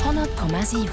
100,7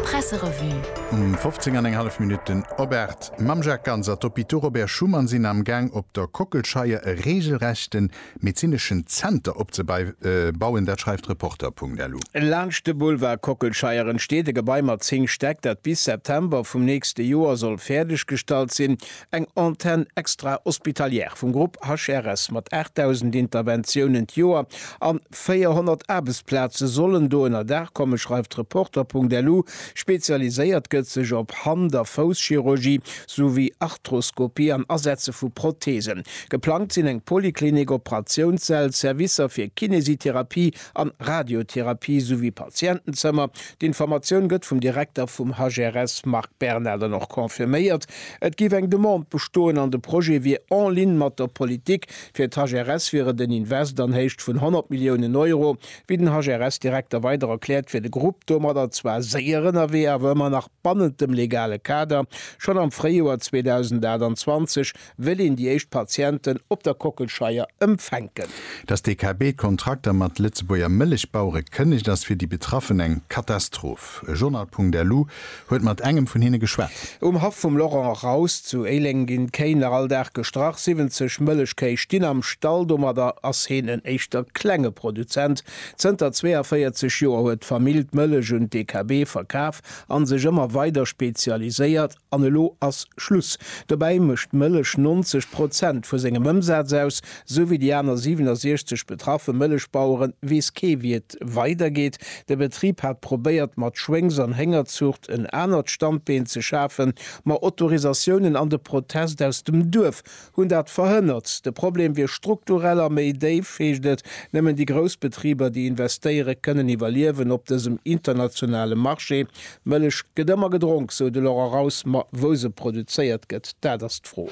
Presserevue Um 15 an eng hallef Minutten op 8 mam Jacques Ganz a d'Hôpitaux Robert Schuman sinn am Gaang op der Kockelscheier e reegelrechte medezineschen Zenter opzebauen, dat schreift Reporter.lu. Laanscht de Boulevard Kockelscheier entsteet e Gebai mat 10 Stäck, dat bis September vum nächste Joer soll fäerdeggestallt sinn. Eng Antenne extra-hospitalière vum Grupp HRS mat 8.000 Interventiounen d'Joer a 400 Aarbechtsplaze sollen do ënner Daach kommen, schreift Reporter.lu. Spezialiséiert gëtt sech op Hand a Fousschirurgie souwéi Arthroskopie an Asetze vu Protheesen. Geplangt sinn eng Poliklinik, Operatiounsssäll, Servicer fir Kinesitherapie an Radiotherapie souwéi Patientenzëmmer. D'Informatioun gëtt vum Direkter vum HRS Marc Bernal dann och confirméiert. Et géif eng Demande bestoen an de Projet wier en ligne mat der Politik. Fir d'HRS wier et en Invest an Héicht vun 100 Milliounen Euro. Wéi den HRS-Direkter weider erkläert, wier de Grupp domadder zwar séier ënnerwee, awer ëmmer nach bannent dem legale Kader. Schonn am Fréijoer 2028 wëll een déi éischt Patienten op der Kockelscheier empfänken. Datt d'DKB d'Kontrakter mat Lëtzebuerger Mëllechbauere kënnegt, ass fir déi Betraffen eng Katastroph. E Journal.lu huet mat engem vun hinne geschwat. Um Haff vum Laurent Raus zu Éileng ginn d'Kéi nach all Dag gestrach. 70 Mëllechkéi stinn am Stall. Domadder ass heen en éischter klenge Produzent. Zënter 42 Joer huet d'Famill d'Mëllech un d'DKB verkaf a sech ëmmer weider spezialiséiert. An elo ass Schluss. Dobäi mécht d'Mëllech 90 Prozent vu sengem Ëmsaz aus. Sou wéi déi aner 67 betraffe Mëllechbaueren, weess kee wéi et weidergeet. De Betrib hat probéiert mat Schwéngs an Héngerzuucht en anert Standbeen ze schafen, ma Autorisatiounen an de Protest aus dem Duerf Hunn dat verhënnert. De Problem wier strukturell a méi déif, heescht et. Nëmmen déi grouss Betriber, déi investéieren, kënnen iwwerliewen op dësem internationale Marché. D'Mëllech gëtt ëmmer gedronk, sou de Laurent Raus. Ma wou se produzéiert gëtt, dat ass d'Fro.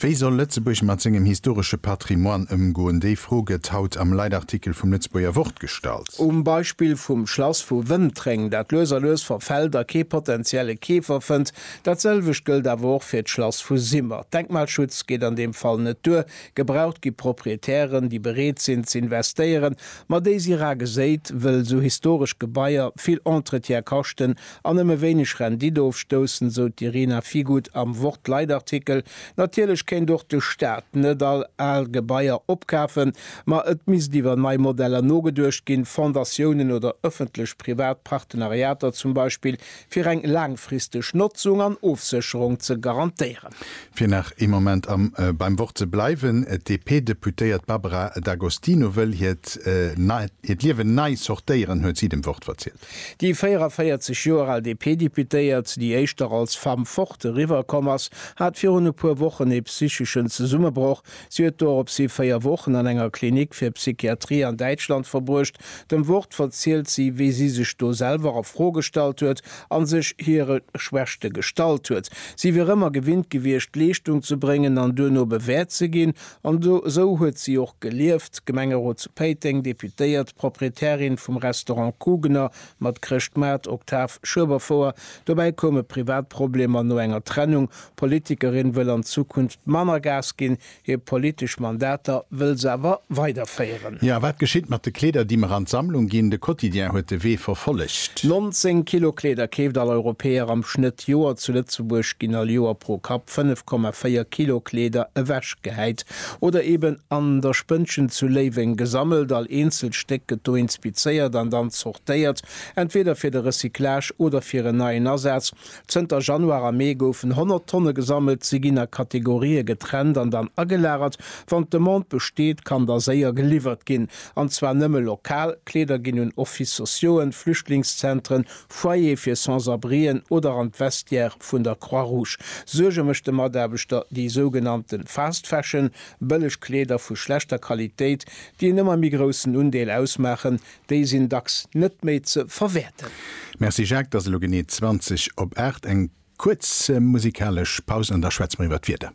Wéi soll Lëtzebuerg mat sengem historesche Patrimoine ëmgoen? Déi Fro gëtt haut am Leitartikel vum Lëtzebuerger Wort gestallt. Um Beispill vum Schlass vu Wëntréng, dat lues a lues verfält a kee potentielle Keefer fënnt, Dat selwecht gëllt awer och fir d'Schlass vu Simmer. Denkmalschutz geet an deem Fall net duer. Gebraucht gi Proprietären, déi bereet sinn z'investéieren, ma déi si rar geséit, wëll esou historesch Gebaier vill Entretien kaschten an nëmme wéineg Rendite ofstoussen, sou d'Irina Figut am Wort-Leit-Artikel. Natierlech kéint och de Staat net all al Gebaier opkafen, ma et misst iwwer nei Modeller nogeduecht ginn, Fondatiounen oder ëffentlech-privat Partenariater zum Beispill, Fir eng laangfristeg Notzung an Ofsécherung ze garantéieren. Fir nach ee Moment am beim Wort ze bleiwen, D'DP-Deputéiert Barbara D'Agostino wëll hiert Liewen nei sortéieren, huet si dem Wort verzielt. Déi 44 Joer al DP-Deputéiert, déi éischter als Femme forte eriwwer komm ass, hat virun e puer Wochen ee psycheschen Zesummebroch, Si huet doropshi véier Wochen an enger Klinik fir Psychiatrie an Däitschland verbruecht. Dem Wort verzielt si, wéi si sech do selwer a Fro gestallt huet a sech hire Schwächte gestallt huet. Si wier ëmmer gewinnt gewiescht, Leeschtung ze bréngen an duerno bewäert ze ginn. An esou huet si och gelieft. Gemengerot zu Péiteng, Deputéiert, Proprietärin vum Restaurant Kugener mat Chrëschtmaart, Octave Schueberfouer. Dobäi koume Privatproblemer no enger Trennung, D'Politikerin wëll an Zukunft manner Gas ginn, hir politesch Mandater wëll se awer weiderféieren. Jo, a wat geschitt mat de Kleeder, déi mer an d'Sammlung ginn? De Quotidien huet de Wee verfollegt. 19 Kilo Kleeder keeft all Europäer am Schnëtt. Joer zu Lëtzebuerg ginn all Joer pro Kapp 5,4 Kilo Kleeder ewechgehäit oder eben an der Spënnchen zu Léiweng gesammelt. All eenzelt Stéck gëtt do inspizéiert an dann zortéiert, entweder fir de Recyclage oder fir en neien Asaz. Zënter Januar a Mee goufen 100 Tonne gesammelt. Si ginn a Kategorië getrennt an dann agelagert. Wann d'Demande besteet, kann da séier geliwwert ginn. An zwar nëmme lokal. Kleeder ginn un Office sociauxen, Flüchtlingszentren, Foyere fir Sans-abrien oder an d'Vestiaire vun der Croix-Rouge. Suerge mécht de Mataarbechter déi sougenannte Fast Fashion, bëlleg Kleeder vu schlechter Qualitéit, déi en ëmmer méi groussen Undeel ausmaachen. Déi sinn dacks net méi ze verwäerten. Merci Jacques, 't ass elo genee 20 op 8, eng kuerz musikalesch Paus an da schwätze mer iwwer d'Wieder.